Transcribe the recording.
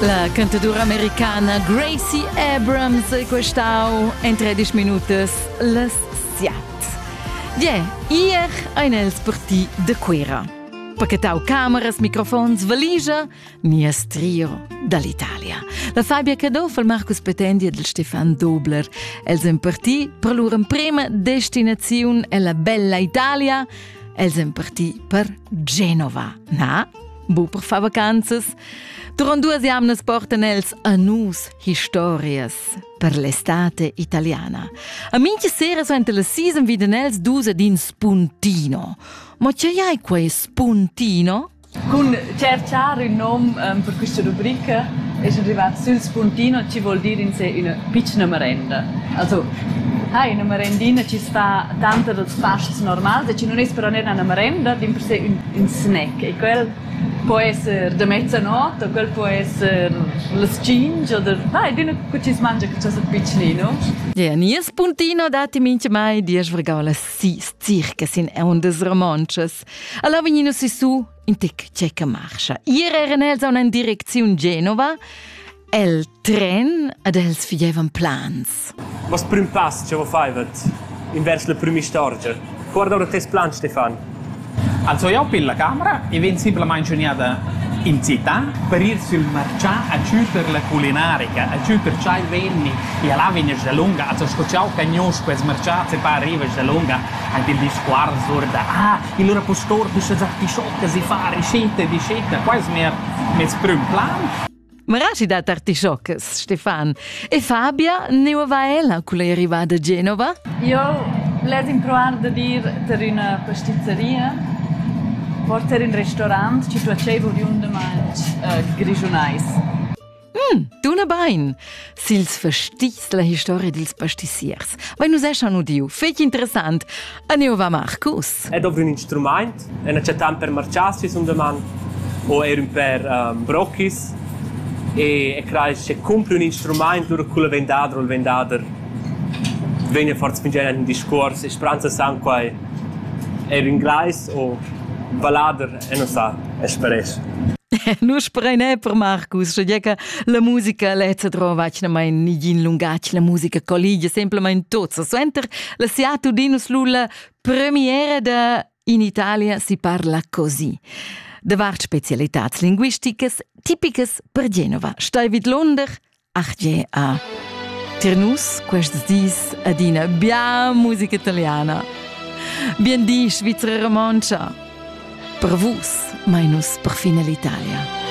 La cantatura americana Gracie Abrams è questau en 13 minutas las siat. Ie, ier ein els per ti de Cuira. Pachetau cameras, microfons, valigia, nies trio dall'Italia. La Fabia Caduff e Marcus Petendi e Stefan Dobler. Els en per ti per lur emprema destinaziun ella bella Italia. Els en per ti per Genova. Na? Bu per far vacanzas. Durant duas jamnas portan els a nus historias per l'estate italiana. A minchia sera suenter la season viden els dus ad in spuntino. Ma che hai quei spuntino? Con cercare un nome um, per questa rubrica è arrivato sul spuntino, ci vuol dire in sé una piccola merenda. Also, hai una merendina ci sta tanta dels pasts normals e ci non è però una merenda, din per sé un in snack e quel po esser da mezzanot u quel po esser las tschinch oder na, ed üna cu chi's mangia que chasa pitschnino. Ja, nies puntino datti minchemai diesch vergaulas sis circas in ondas romontschas. Alla vegnino sissu in tec tschecca marcha. Ier eran els a una direcziun Genova El tren ed els figevan plans. Mas prüm pass cha vo faivat invers la prüm'istorgia. Guarda ora tes plan, Stefan. Also jau pil la camera e vegn simplamain giugnada in città per ir sul marcià a tuter la culinarica, a tuter chai venni e a là vegnas da lunga, also sco ciao cagnos quels marciats e pa arrivas da lunga anche il discorso da ah, il rapportor bisha già tiscioccas e fa ricetta e dicetta, quais mer mes prüm plan. Maraschi dat artischoccas, Stefan. E Fabia, ne va ella culla arrivada a Genova? Io les improvar da dir per üna pastizzeria, porter in restaurant, ci tuaceva oriundamain uh, grischunais. Mm, tuna bain. sils festis la historia dils pastiziers. Vai nus eschan udiu, fetg interessant. A neu va Marcus. È dovri un instrument, è necessità per marciassi un doman o er un per um, brochis e e crai se compri un instrument lura cul vendador o il vendader vegn a far spingere un discorso e spranza san quai er inglais o vallader e nu sa, es pres. nu sprein è per Marcus, sche che la musica lezza drova vacnamain nigin lungatg, la musica colligia semplamain tots. Suenter la Seattle Dinus Lulla premiere da in Italia si parla così. Davart specialitats linguisticas tipicas per Genova. Stai vid Londer, Argea. Tir nus quests dis adina bia musica italiana. Bien di, Svizra romontscha! Per vus, mai nus per fine l'Italia.